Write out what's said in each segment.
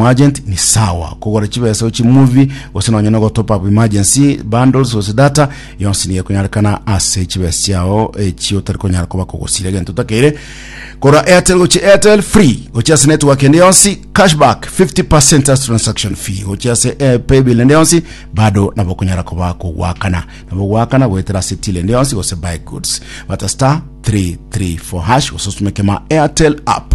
Muagent ni sawa kogora chibesa gochia movie gose nonya no gotop up emergency bundles gose data yonsi nigo ekonyarekana ase chibesa chiao echi otari konyara koba kogosira egento otakeire kora airtel gochia airtel free gochia ase network ende yonsi cashback 50% as transaction fee gochia ase eh, paybill ende yonsi bado nabo okonyara koba kogwakana nabo gwakana goetera ase till ende yonsi gose buy goods bata star 334 hash gose osumekema airtel app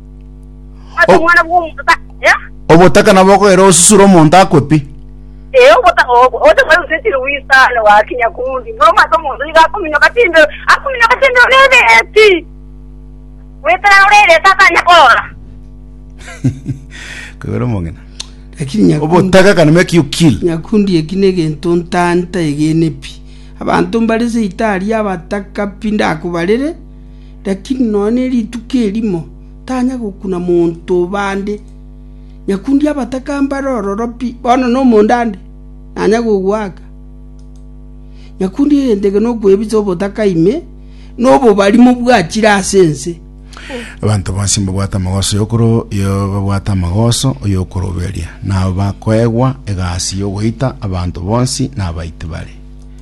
Ase Oh. omwana bw'omonto ta... Eh? Obotaka nabo okogera osusure omonto akwe pi. Eh, obota- ob- ote mwari usesire wisane wakinya kundi. Buna omwate omonto iga akominyoka timbero, akominyoka timbero nebeti. Wetera orere ase atanya korora. Kogera omong'ina. lakini nyakundi Obotaka can make you kill. nyakundi eki negento ntanta egene pi abanto mbare seitari abataka pi ndakobarere Lakini nonya ne rituko erimo tanya gokuna monto bande. Nyakundi abataka mbare ororo pi, bono nomonto ande, nanya kogoaka. Nyakundi egento eke nokwebisa obotaka ime, na obobarimo bwachire ase ense. Abanto bonsi mbabwate amagoso y'okoro yo babwate amagoso oy'okoroberia, nabo bakoegwa egasi y'ogoita abanto bonsi nabaiti bare.